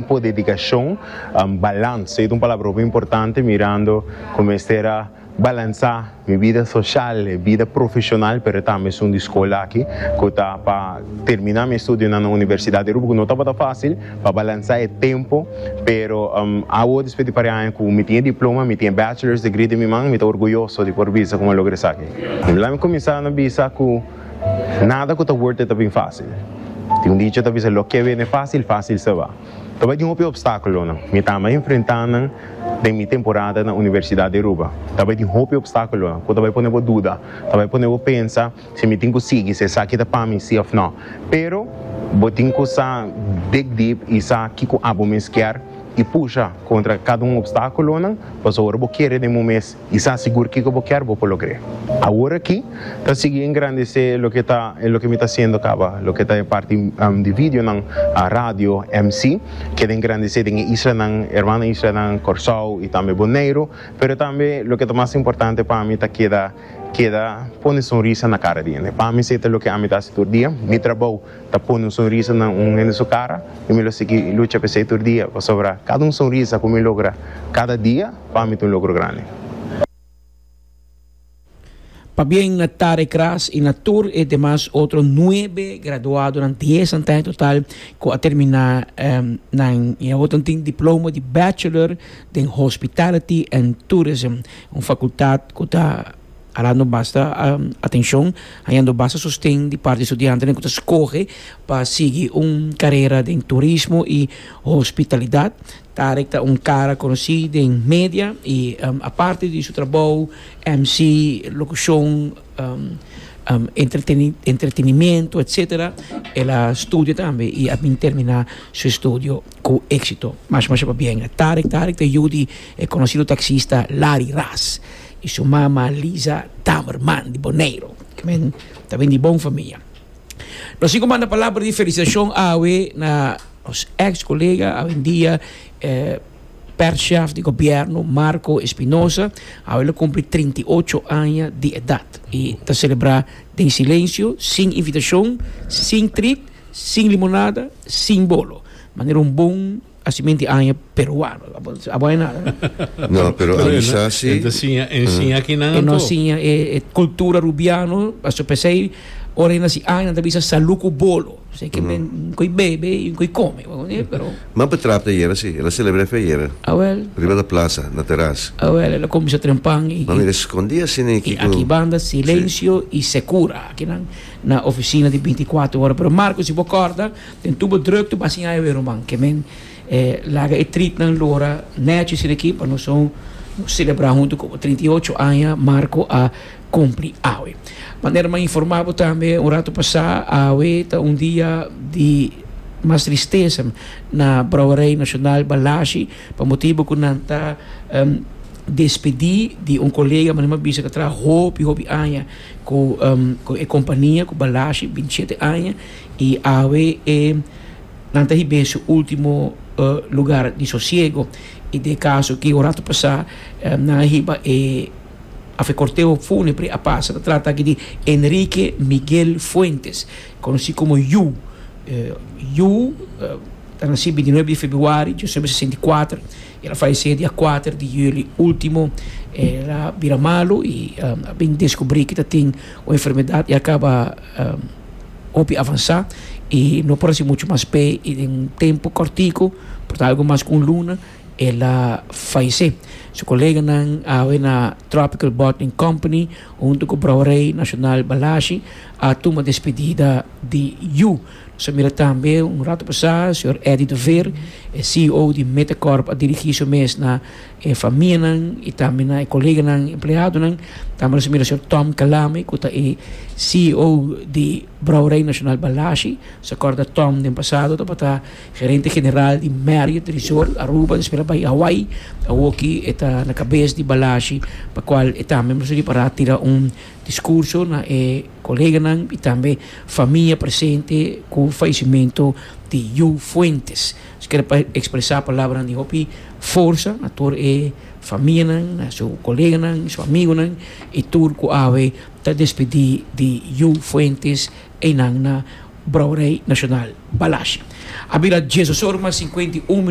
Tempo, dedicacion, balans. Ey ta un palabra hopi importante mirando cu mester a balansa mi bida social, bida profesional pero tambe esun di scola aki cu ta pa termina mi estudionan na universidad di Aruba cu no tabata facil pa balansa e tempo pero awo despues di pari aña cu mi tin e diploma, mi tin e bachelors degree di mi man mi ta orguyoso di por bisa cu mi a logra esaki. Lami cuminsa na bisa cu. Nada cu ta worth it ta bin fácil. Tin un dicho ta bisa, Lo que vene fácil, fácil se va. Ta bay di un hopi obstáculonan. Mi ta ama enfrentá nan den mi temporada na Universidad di Aruba. Ta bay di un hopi obstáculonan cu ta bay pone bo duda, ta bay pone bo pensa si mi tin cu sigui, si esaki ta pa mi, sí of no. Pero bo tin cu sa dig deep y sa kico abo mes kier y pusha contra cada un obstáculonan pasobra bo kere den bo mes. I sa sigur kiko bo kier bo por logr'é. Awor aki, ta sigui engrandecé loke ta e loke mi ta hasiendo caba, loke ta e parti di videonan, radio, mc. Keda engrandecé den e islanan, hermano islanan, Corsou i tambe Boneiro. Pero tambe loke ta mas importante pa mi ta keda keda pone sonrisa na cara di hende. Pa mi se ta loke ami ta hasi tur dia. Mi trabou ta pone un sonrisa na un hende su cara y mi lo sigui lucha pa esey tur dia pasobra cada un sonrisa cu mi logra cada dia pa mi ta un logro grandi. Pabien na Tare Kras y na tur e demas otro nuebe graduadonan, diesan ta en total, cu a termina nan y awotan tin diploma di Bachelor den Hospitality and Tourism, un facultad cu ta. Hañando basta atenshon, hañando basta sosten di parti di studiantenan ku ta skohe pa sigui un karera den turismo i hospitalidat. Tarek ta un kara konosí den media i aparte di su trabou MC, lokushon, entretenimiento etsetera el a studia tambe i a bin terminá su estudio ku éksito. Masha masha pabien Tarek. Tarek ta yu di e konosido taksista Lari Ras. y su mama Lisa Taberman di Boneiru cu men ta bin di bon famia. Nos tin cu manda palabra di felicitacion awe na nos ex colega awendia eh perchef di gobierno Marco Espinosa, awe lo cumpli trinta i ocho aña di edad y ta celebra den silencio, sin invitacion, sin treat, sin limonada, sin bolo, manera un bon Asi men di aña peruano. Abo hay nada. No, pero a bisa si. Enta siña, ensiña aki nan E no anto. siña e, e cultura rubiano, paso pesei ora e nasi aña ta bisa salud cu bolo. Sei que men koe bebe y koe come, bo comprende? Pero Man pa trap ta yera si. Ela celebra fe yera. awel, Riba da plaza, na teras. awel, ela come sa tren pan y, Man y, mira escondi así ni y kico. aki banda silencio y secura aki nan na oficina di binti y kuater ora. Pero Marco, si bo corda, Den tubo drukte pa siña ewe ruman ke men e laga e tritnan lora nechi asina aki pa nos un selebrá huntu komo trinta i ocho aña Marco a kumpli awe. Manera m'a informá bo tambe un ratu pasá, awe ta un dia di mas tristesa na Brouwerij Nasional Balashi pa motibu ku nan ta despedí di un kolega mane m'a bisa ku a traha hopi hopi aña ku e kompania ku Balashi, binti shete aña, I awe e nan ta hib'é su último lugar di sosiego. I den e kaso aki un ratu pasá nan a hiba e òf e korteo fúnebre a pasa. Ta trata aki di Enrique Miguel Fuentes, konosí komo Yu. Yu a nasi bintinueb di febrüari di diosesenba i sesenta i kuater, i el a falesé dia kuater di yüli último. El a bira malu i a bin deskubrí ku ta tin un enfermedat i a kaba. hopi avansá i no por hasi muchu mas p'e i den un tempu kòrtiku, por ta algu mas ku un luna, el a falesé. Su koleganan awe na Tropical Bottling Company huntu ku Brouwerij Nasional Balashi a tuma despedida di yu. Nos a mira tambe un ratu pasá señor Eddy de Veer, e ceo di Metacorp a dirigí su mes na. e famianan i tambe na e koleganan empleadonan, tambe nos a mira señor Tom Calame ku ta e CEO di Brouwerij Nasional Balashi, nos a kòrda Tom den pasado tabata gerente general di Marriot Resort Aruba, despues a bai Hawaii, awoki e ta na kabes di Balashi, pa kual e tambe nos a ripará tira un diskurso na e koleganan i tambe famia presente ku fallesimento di Yu Fuentes. Kere pa ekspresá palabranan di hopi forsa na tur e famianan, na su koleganan, su amigunan i tur ku awe ta despedí di yu fuentes einan na brouwerei nashonal Balashi. A bira dies osor mas sinkwenta i un.